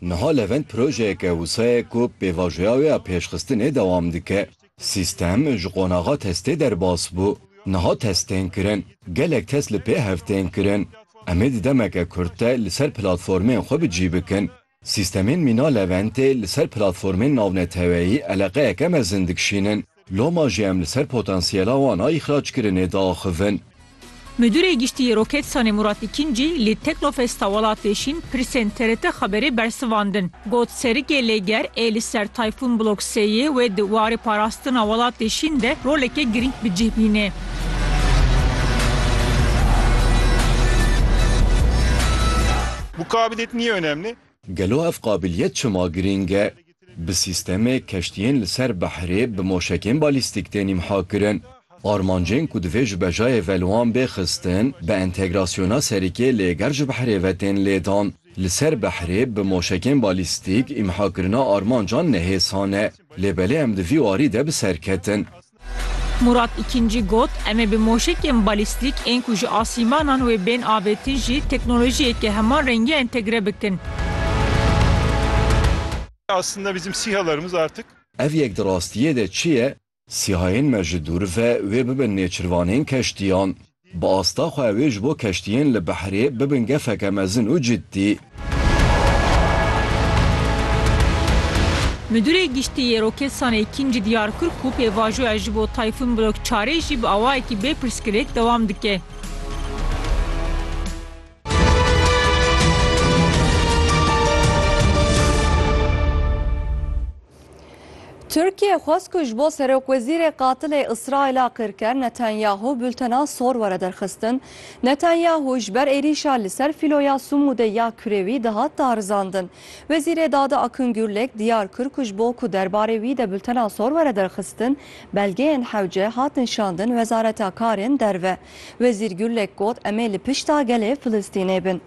Niha Levent projeyeke wisa ye ku pêvajoya wê ya pêşxistinê dewam dike. Sîstem ji qonaxa testê derbas bû. Niha test tên kirin. Gelek test li pêhev tên kirin. Em ê di demeke kurt de li ser platformên xwe bi cî bikin. Sîstemên mîna Leventê li ser platformên navneteweyî eleqeyeke mezin dikşînin. Loma jî em li ser potansiyela wan a îxrackirinê diaxivin. Midûrê Giştî yê Roketsanê Murat Îkîncî li Teknofesta Welatê Şîn pirsên TRT Xeberê bersivandin. Got serikê lêger ê li ser Tayfûn Blok sêyê wê di warê parastina welatê Şîn de roleke girîng bi cih bînê. Gelo ev qabiliyet çima girîng e? Bi sîstemê keştiyên li ser behrê bi moşekên balîstîk tên îmha kirin. Armancên ku divê ji bejayê ve li wan bê xistin, bi entegrasyona serikê lêger ji behrê ve tên lêdan. Li ser behrê bi moşekên balîstîk îmhakirina armancan ne hêsan e, lê belê em di vî warî de bi ser ketin. Murat Îkincî got, Em ê bi moşekên balîstîk ên ku ji asîmanan wê bên avêtin jî teknolojiyeke heman rengî entegre bikin. Ev yek di rastiyê de çi ye? Sîhayên me ji dûr ve wê bibin nêçirvanên keştiyan. Bi asta xwe ew ê ji bo keştiyên li behrê bibin gefeke mezin û ciddî. Midûrê Giştî yê Roketsanê Kînci diyar kir ku pêvajoya ji bo Tayfûn Blok çar ê jî bi awayekî bê pirsgirêk dewam dike. Tirkiyê xwest ku ji bo serokwezîrê qatilê Îsraîla Qirker Netanyahu bultena sor were derxistin. Netanyahu ji ber êrîşa li ser fîloya Sumûdê ya kurê wî dihat darizandin. Wezîrê Dade Akun Gurlek diyar kir ku ji bo ku derbarê wî de bultena sor were derxistin, belgeyên hewce hatin şandin Wezareta Karên Derve. Wezîr Gurlek got, Em ê li pişta gelê Filistînê bin.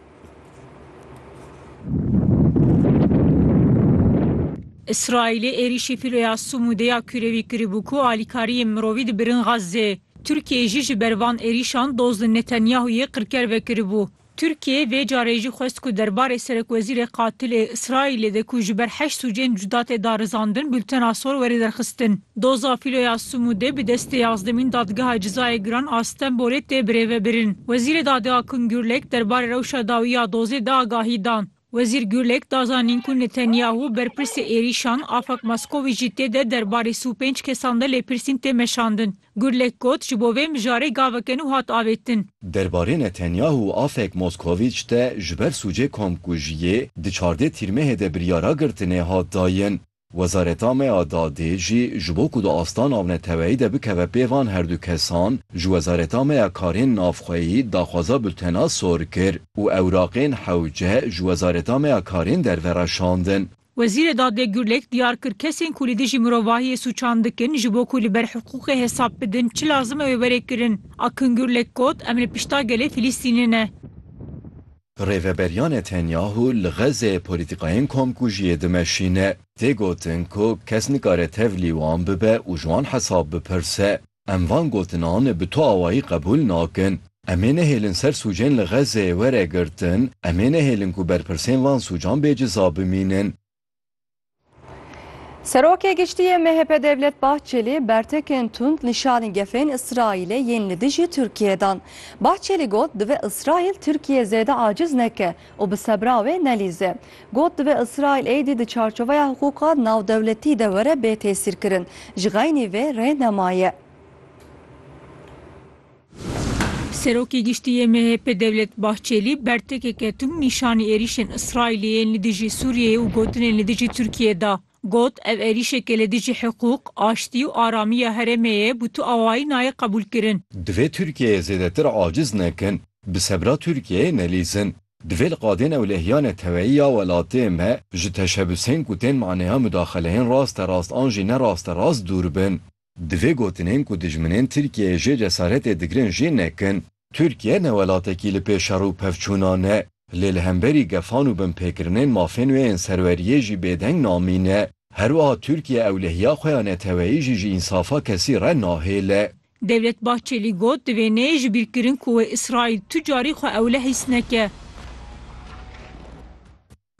Îsraîlê êrîşî filoya Sûmûdê ya kûrevî kiribû ku alîkariyên mirovî dibirin Xazzê. Tirkiyeyê jî ji ber van êrîşan doz li Netanyahûyê qirker vekiribû. Tirkiyê vê carê jî xwest ku derbarê serekwezîrê qatilê Îsraîlê de ku ji ber heşt sûcên cuda tê darizandin bultena sor were derxistin. Doza Filoya Sumûdê bi destê yazdemîn Dadgeha Cizayê Giran a Stenbolê tê birêvebirin. Wezîrê Dadê Akun Gurlek derbarê rewşa dawî ya dozê de agahî da. Wezîr Gurlek da zanîn ku Netanyahu, berpirsê êrîşan, Afak Maskovî jî tê de derbarê sî û pênc kesan de lêpirsîn tê meşandin. Gurlek got, Ji bo vê mijarê gaveke nû hat avêtin. Derbarê Netanyahu û Afek Moskovic de ji ber sûcê komkujiyê di çardê tîrmehê de biryara girtinê hat dayin. Wezareta me ya Dadê jî ji bo ku di asta navneteweyî de bikeve pêvan her du kesan, ji Wezareta me ya Karên Navxweyî daxwaza bultena sor kir û ewraqên hewce ji Wezareta me ya Karên Derve re şandin. Wezîrê Dadê Gurlek diyar kir, kesên ku li dijî mirovahiyê sûçan dikin ji bo ku li ber hiqûqê hesab bidin çi lazim e wê were kirin. Akın Gurlek got, Em li pişta gelê Filistînê ne. Rêveberiya Netanyahu li Xezzeyê polîtîkayên komkujiyê dimeşîne. Tê gotin ku kes nikare tevlî wan bibe û ji wan hesab bipirse. Em van gotinan bi tu awayî qebûl nakin. Em ê nehêlin ser sûcên li Xezzeyê were girtin, em ê nehêlin ku berpirsên van sûcan bê ceza bimînin. Serokê Giştî yê MHP Devlet Bahçelî bertekên tund li şanî gefên Îsraîlê yên li dijî Tirkiyeyê dan. Bahçelî got divê Îsraîl Tirkiye zêde aciz neke û bi sebra wê nelîze. Got divê Îsraîl êdî di çarçoveya hiqûqa navdewletî de were bê têsîrkirin. Ji xeynî vê rê nemaye. Serokê Giştî yê MHP'ê Devlet Bahçelî bertekê ketum nîşanî êrîşên Îsraîlê yên li dijî Sûriyeyê û gotinên li dijî Tirkiyeyê da. Got, Ev êrîşeke li dijî hiqûq, aştî û aramî ya herêmê ye bû tu awayî nayê qebûlkirin. Divê Tirkiyeyê zêdetir aciz nekin, bi sebra Tirkiyeyê nelîzin. Divê li qadên ewlehîya neteweyî ya welatê me ji teşebusên ku tên maneya mudaxeleyên rasterast an jî ne rasterast dûr bin. Divê gotinên ku dijminên Tirkiyeyê jê cesaretê digirin jê nekin. Tirkiye ne welatekî li pê şer û pevçûna ne, lê li hemberî gefan û binpêkirinên mafên wê ên serweriyê jî bêdeng namîne. Herwiha Tirkiye ewlehiya xwe ya neteweyî jî ji însafa kesî re nahêle. Devlet Bahçelî got, Divê neyê ji bîr kirin ku wê Îsraîl tu carî xwe ewlehîs neke.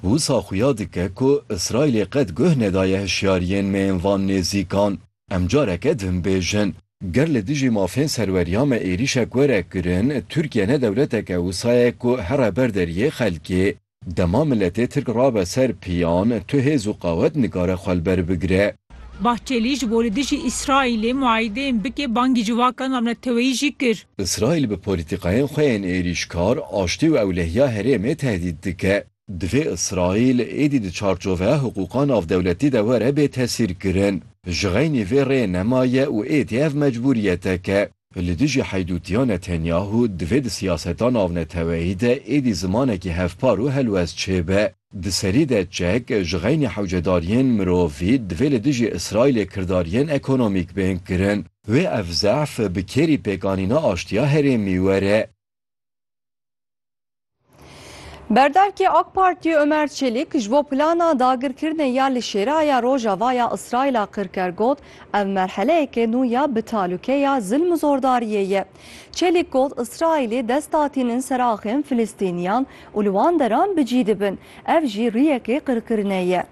Wisa xuya dike ku Îsraîlê qet guh nedaye hişyariyên me yên van nêzîkan. Em careke din bêjin. Ger li dijî mafên serweriya me êrîşek were kirin, Tirkiye ne dewleteke wisa ye ku here ber deriyê xelkê. Dema miletê Tirk rabe ser piyan, tu hêz û qawet nikare xwe li ber bigire. Bahçelî ji bo li dijî Îsraîlê muayideyên bike bangî civaka navneteweyî jî kir. Îsraîl bi polîtîkayên xwe yên êrîşkar, aştî û ewlehiya herêmê tehdît dike. Divê Îsraîl êdî di çarçoveya hiqûqa navdewletî de were bê tesîrkirin. Ji xeynî vê rê nemaye û êdî ev mecbûriyeteke. Li dijî heydûtiya Netanyahu divê di siyaseta navneteweyî de êdî zimanekî hevpar û helwest çêbe. Di serî de çek ji xeynî hewcedariyên mirovî divê li dijî Îsraîlê kirdariyên ekonomîk bên kirin. Wê ev zehf bi kêrî pêkanîna aştiya herêmî were. Berdevkê AK Partiyê Ömer Çelik ji bo plana dagirkirinê ya li Şêraya Rojava ya Îsraîla qir ker got, Ev merheleyeke nû ya bi talûke ya zilm û zordariyê ye. Çelik got, Îsraîlê dest datînin ser axên Filistîniyan û li wan deran bi cî dibin. Ev jî riyekê qirkirinê ye.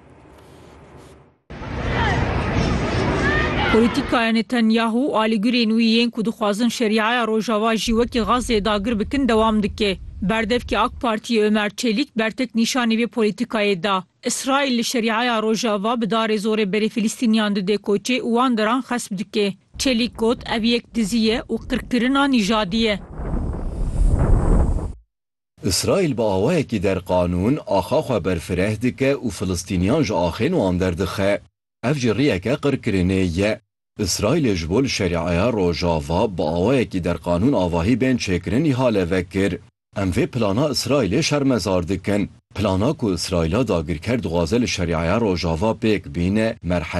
Polîtîkaya Netanyahu û alîgirên wî yên ku dixwazin Şerîaya Rojava jî wekî Xazzeyê dagir bikin dewam dike. Berdevkê ak Partiyê Ömer Çelîk bertek nîşanî vê polîtîkayê da. Îsraîl li Şerîaya Rojava bi darê zorê berê Filistîniyan dide koçê û wan deran xesp dike. Çelîk got, Ev yek dizî ye û qirkirina nîjadî ye. Îsraîl bi awayekî derqanûn axa xwe berfireh dike û Filistîniyan ji axên wan derdixe. Ev jî rêyeke qirkirinê ye. Îsraîlê ji bo li Şerîeya Rojava bi awayekî derqanûn avahî bên çêkirin îhale vekir. Em vê plana Îsraîlê şermezar dikin. Plana ku Îsraîla dagirker dixwaze li Şerîeya Rojava pêk bîne, merhele